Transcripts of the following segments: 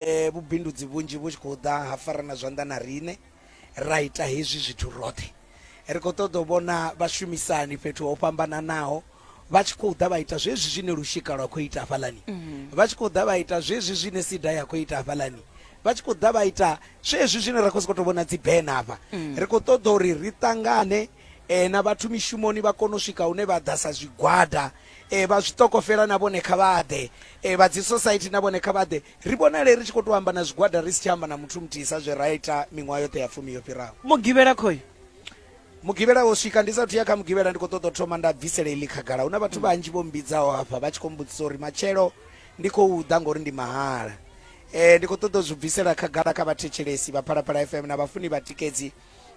eh, vhubindudzi vhunzhi vhu tshi khou ḓa ha farana zwanḓa na riṋe ra ita hezwi zwithu roṱhe ri khou ṱoḓa u vhona vhashumisani fhethu ho fhambananaho vha tshi khou ḓa vha ita zwezwi zwine lushika lwa khou ita hafhalani mhm. vha tshi khou ḓa vha ita zwezwi zwine sida ya khou ita hafhalani vha tshi khou ḓa vha ita zwezwi zwine ra khou sokou tou vhona dzibena hafha mm. ri khou ṱoḓa uri ri ṱangane um na vhathu mishumoni vha kone u swika hune vha ḓa sa zwigwada e, vha zwitokofela na vhone kha vha ḓe e, vha dzi society na vhone kha vha ḓe ri vhonale ri tshi khou tou amba na zwigwada ri si tsha amba na muthu muthihi sa zwe ra ita miṅwaha yoṱhe ya fumi yo fhiraho mugivhela khoyo mugivhela wo swika ndi sathu ya kha mugivhela ndi khou ṱoḓa u thoma nda bvisela iḽi khagala hu na vhathu vhanzhi vho mbidzaho hafha vha tshi khou mbudzisa uri matshelo ndi khou ḓa ngori ndi mahala um ndi khou ṱoḓa u zwi bvisela khagala kha vhathetshelesi vha phalaphala fm na vhafuni vhatikedzi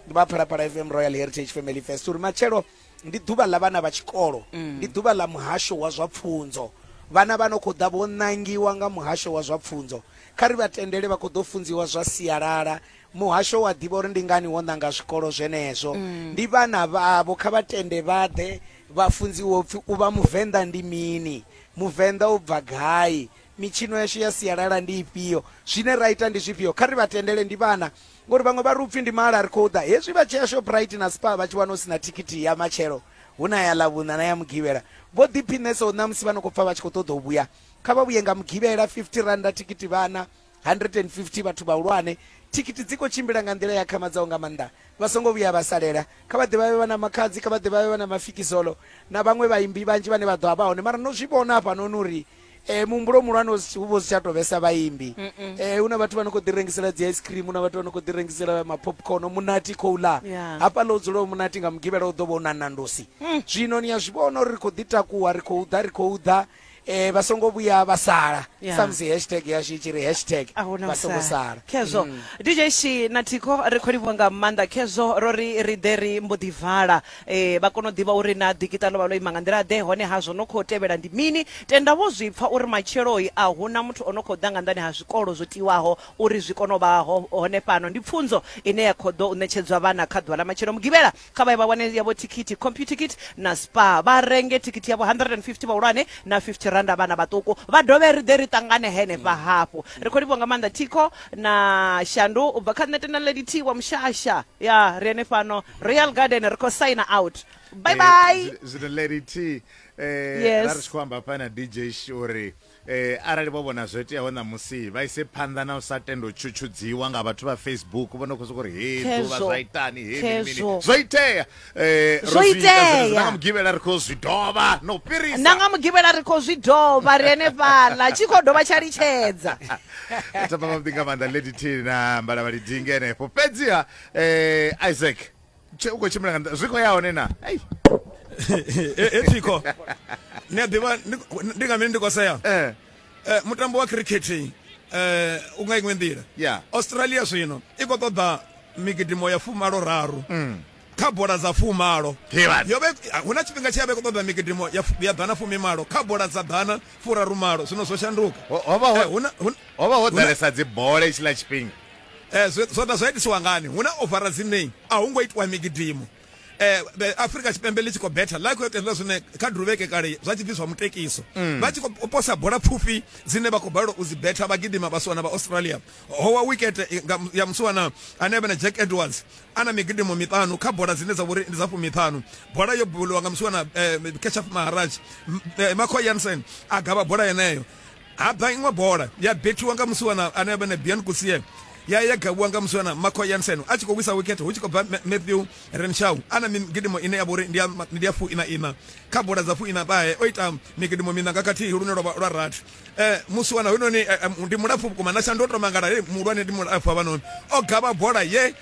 vha phalaphala fm royal heritage family fest uri matshelo ndi ḓuvha ḽa vhana vha tshikolo mm. ndi ḓuvha ḽa muhasho wa zwa pfunzo vhana vha no khou ḓa vho ṋangiwa nga muhasho wa zwa pfunzo kha ri vha tendele vha khou ḓo funziwa zwa sialala muhasho wa ḓivha uri ndi ngani wo ṋanga zwikolo zwenezwo mm. ndi vhana vhavho kha vha tende vha ḓe vha funziwe upfhi u vha muvenḓa ndi mini muvenḓa u bva gai Mitshino yashu ya sialala ndi ifhio? Zwine ra ita ndi zwifhio? Kha ri vha tendele, ndi vhana. Ngori vhaṅwe vha ri upfi ndi mahala ri khou ḓa. Hezwi vha tshea Shoprite na Spar vha tshi wana hu si na thikhithi ya matshelo, hu na ya Ḽavhuṋa na ya Mugivhela. Vho ḓiphiṋesaho ṋamusi vha no khou pfa vha tshi khou ṱoḓa u vhuya. Kha vha vhuye nga Mugivhela, R50 thikhithi vhana, R150 vhathu vhahulwane. Thikhithi dzi khou tshimbila nga nḓila i akhamadzaho nga maanḓa. Vha songo vhuya vha salela. Kha vha ḓe vha vhe vha na Makhadzi, kha vha ḓe vha vhe vha na Mafikizolo na vhaṅwe vhaimbi vhanzhi vhane vha ḓo a vha hone. Mara no zwi vhona hafhanoni uri Eh muhumbulo muhulwane u si- u vha u si tsha tou vhesa vhaimbi Eh hu na vhathu vha no khou ḓi rengisela dzi ice cream hu na vhathu vha no khou ḓi rengisela mapopcorn munati khou ḽa Yeah. hafhaḽa u dzula u munati nga mugivhela u ḓo vha u na nandosi zwino ni a zwi vhona uri ri khou ḓi takuwa ri khou ḓa ri khou ḓa eh vha songo vhuya vha sala Yeah. samusi hashtag yashu i tshi ri hashtag a huna vha songo sala khezwo dj shi na thikho ri khou livhuwa nga maanḓa khezwo ro ri ri ḓe ri mbo ḓi vala E, vha kona u ḓivha uri na ḓikiṱa ḽo vha ḽo ima nga nḓila ḓe hone ha zwo no khou tevhela ndi mini tenda vho zwi pfa uri matsheloi a hu na muthu o no khou ḓa nga nḓani ha zwikolo zwo tiwaho uri zwi kone u vha ho, hone fhano ndi pfunzo ine ya khou ḓo u ṋetshedzwa vhana kha ḓuvha ḽa matshelo mugivhela kha vha ye vha wane yavho thikhithi computicket na spa vha renge thikhithi yavho 150 vhahulwane na 50 randa vhana vhaṱuku vha dovhe ri ḓe ri ṱangane henefha mm. hafhu ri khou livhuwa nga maanḓa thikho na shandu u bva kha nṋe tenda lady t wa mushasha ya ri ene fhano real garden ri khou signer out bye bye Eh, zwi- zwino lady t eh, Yes. ra ri tshi khou amba hafha na dj Sh uri eh, arali vho vhona zwo iteaho ṋamusi vha ise phanḓa na u sa tenda u tshutshudziwa nga vhathu vha facebook vho no khou sokou ri he ḓuvha Khezwo. zwa itani he mini mini Khezwo. zwo itea Eh, ro Zwo zwi ita itea. zwenezwo, na nga mugivhela ri khou zwi dovha na u na fhirisa nga mugivhela ri khou zwi dovha ri henefhaḽa tshi khou dovha tsha litshedza thapa vhavhuḓi nga maanḓa lady t na mbalavhali dinge henefho fhedziha eh Isaac tshe u khou tshimbila nga nḓila- zwi khou ya hone na Ei, ethiko ni a ḓivha ni- ndi nga mini ndi khou sea eh Eh, mutambo wa cricket eh u nga iṅwe nḓila Yeah. australia zwino i khou ṱoḓa migidimo ya fumalo raru kha bola dza fumalo Hivhani. yo vha i- hu na tshifhinga tshi ya vha i khou ṱoḓa migidimo ya fu- ya ḓana fumi malo kha bola dza ḓana furaru malo zwino zwo shanduka Ho- ho vha ho- Eh, hu na- hu na- ho vha ho hu na- ḓalesa dzibole tshila tshifhinga eh, zwe- zwa ḓa zwa itisiwa ngani hu na ovara dzine a hu ngo itiwa migidimo eh, be- afrika tshipembe ḽi tshi khou betha ḽa khou itelwa zwine kha duruvheke kale zwa tshi pfi zwa mutekiso vha tshi khou posa bola pfufhi dzine vha khou balelwa u dzi betha vha gidima vha suwana vha australia ho wa wikete i- nga- ya musiwana ane vhe na jack edwards ana migidimo miṱanu kha bola dzine dza vhori ndi dza fumiṱhanu bola yo buliwa nga musiwana eh, keshaf maharaj M- eh, makho yansen a gavha bola yeneyo Ha bva iṅwe bola ya bethiwa nga musiwana ane a vha na Bian Kusie ya ya gavhiwa nga musiwana Marco Jansen a tshi khou wisa wikhethe hu tshi khou bva Matthew Renshaw a na migidimo ine ya vha uri ndi ya fuina ina kha bola dza fuina ṱahe o ita migidimo mina nga khathihi lune lwa lwa rathi eh musiwana hoyunoni eh, eh, ndi mulapfu vhukuma na shandu o tou mangala he muhulwane ndi mulapfu havhanoni o gavha bola ye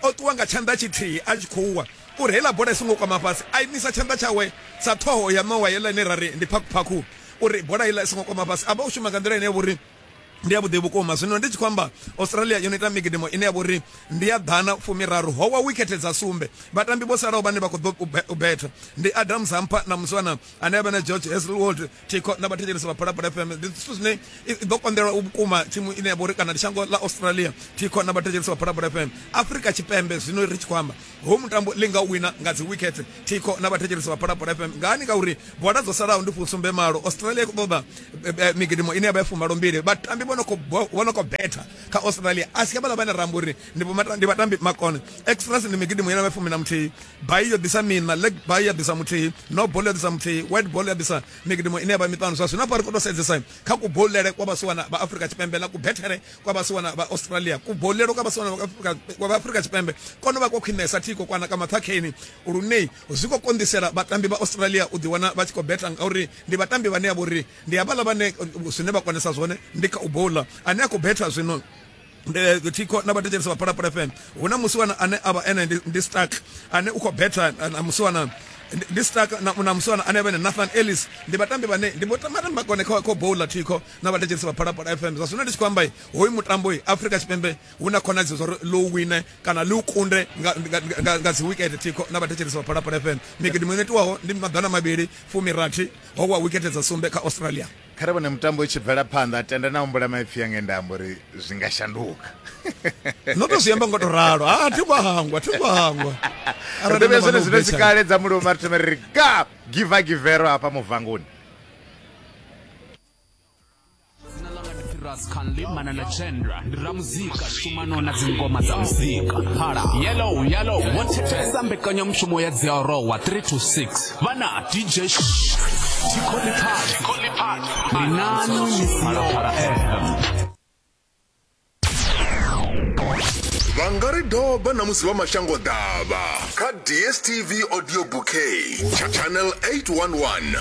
o ṱuwa nga tshanḓa tshithihi a tshi khou wa uri heiḽa bola i songo kwama fhasi a imisa tshanḓa tshawe sa ṱhoho ya ṋowa yeḽa ine ra ri ndi phakhuphakhu uri bola iḽa i songo kwama fhasi a vha u shuma nga nḓila ine ya vhori ndi ya vhuḓi vhukuma zwino ndi tshi khou amba australia yo no ita migidimo ine ya vhori ndi ya ḓana fumiraru howa wikhethe dza sumbe vhatambi vho salaho vhane vha khou ḓo u betha ndi adam zampa na muswana ane a vha na george heselwold tiko na vhathetshelesi vha phalaphala fm ndi zwithu zwine ḓo konḓelwa u vhukuma thimu ine ya vhori kana ndi shango ḽa australia tiko na vhathetshelesi vha phalaphala fm afrika tshipembe zwino ri tshi khou amba Hoyu mutambo ḽi nga u wina nga dzi wikhethe thikho na vhathetshelesi vha Phalaphala FM ngani ngauri bola dzo salaho ndi fusumbe malo Australia i khou ṱoḓa eh, eh, migidimo ine ya vha ya fumalo mbili vhatambi vho no khou bo- vho no khou betha kha Australia a si havhala vhane ra amba uri ndi vhomata- ndi vhatambi makone extras ndi migidimo ine ya vha ya fumi na muthihi bai yo ḓisa mina leg bai ya ḓisa muthihi no ball ya ḓisa muthihi white ball ya ḓisa migidimo ine ya vha miṱanu zwa zwino hafha ri khou tou sedzesa kha kubolele kwa vhasiwana vha Afrika Tshipembe na kubethere kwa vhasiwana vha australia kubolelo kwa vhasiwana vha afurika tshipembe kono vha kwa khwinesa thiko kwana ka mathakheni lune zwi khou konḓisela vhatambi vha australia u ḓiwana vha tshi khou beta ngauri ndi vhatambi vhane ya vha uri ndi havhaḽa vhane zwine vha konesa zwone ndi kha u bola ane a khou beta zwino Eh, thikho na vhathetshelesi vha phalaphala fm hu na musiwana ane a vha ene ndi stark ane u khou betha eh, na musiwana ndi stark na musiwana ane vhene nathan ellis ndi vhatambi vhane ndi vhatambi vhakone kha bowla thikho na vhathetshelisi vha phalaphala fm zwa zwino ndi tshi khou amba hoyu mutambo afrika tshipembe hu na khonadzeo zwa uri ḽo wine kana ḽi u kunde nga dzi wikete thikho na vhathetshelisi vha phalaphala fm migidi muṅwe itiwaho ndi maḓana mavhili fumirathi ho wa wikete dza sumbe kha australia kha ri vhone mutambo i tshi bvela phanḓa tenda na humbula maipfi ya ngenda amba uri zwi nga shanduka no to zwi amba ngo to ralo a thi ngo hangwa thi ngo hangwa arali ndo vhe zwone zwino tshikale dza mulomo ri thome ri ga giva givero hafha muvangoni dzina ḽanga ndi firas canli manana chendra ndi ramuzika shumano na dzingoma dza muzika phala yellow yellow vho thetshelesa mbekanyamushumo ya dzi arowa 3 to 6 vhana dj tikholipad ndi nani misalophala fm vha nga ri doba na musi vha mashango ḓavha kha dstv audio bouquet cha channel 811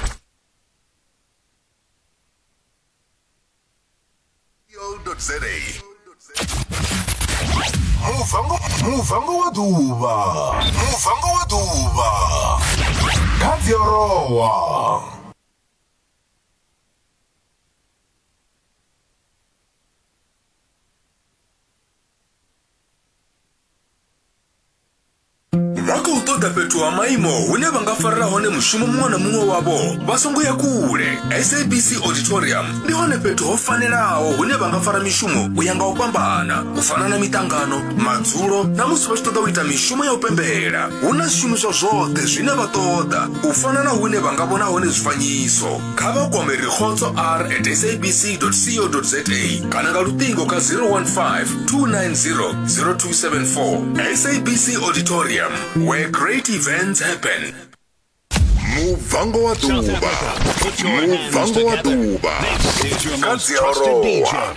za muvango muvango wa ḓuvha muvango wa ḓuvha kha dziorowa vha khou ṱoḓa fhethu ha maimo hune vha nga farela hone mushumo muṅwe na muṅwe wavho vha songo ya kule sabc auditorium ndi hone fhethu ho fanelaho hune vha nga fara mishumo u ya nga u fhambana u fana na miṱangano madzulo na musi vha tshi ṱoḓa u ita mishumo ya u pembela hu na zwishumiswa zwoṱhe zwine vha ṱoḓa u fana na hune vha nga vhona hone zwifanyiso kha vha kwame rikhotso r at sabc co za kana nga luṱingo kha 015 290 0274 sabc auditorium where great events happen mubvango wa ḓuvha mubvango wa ḓuvha kha dziarowa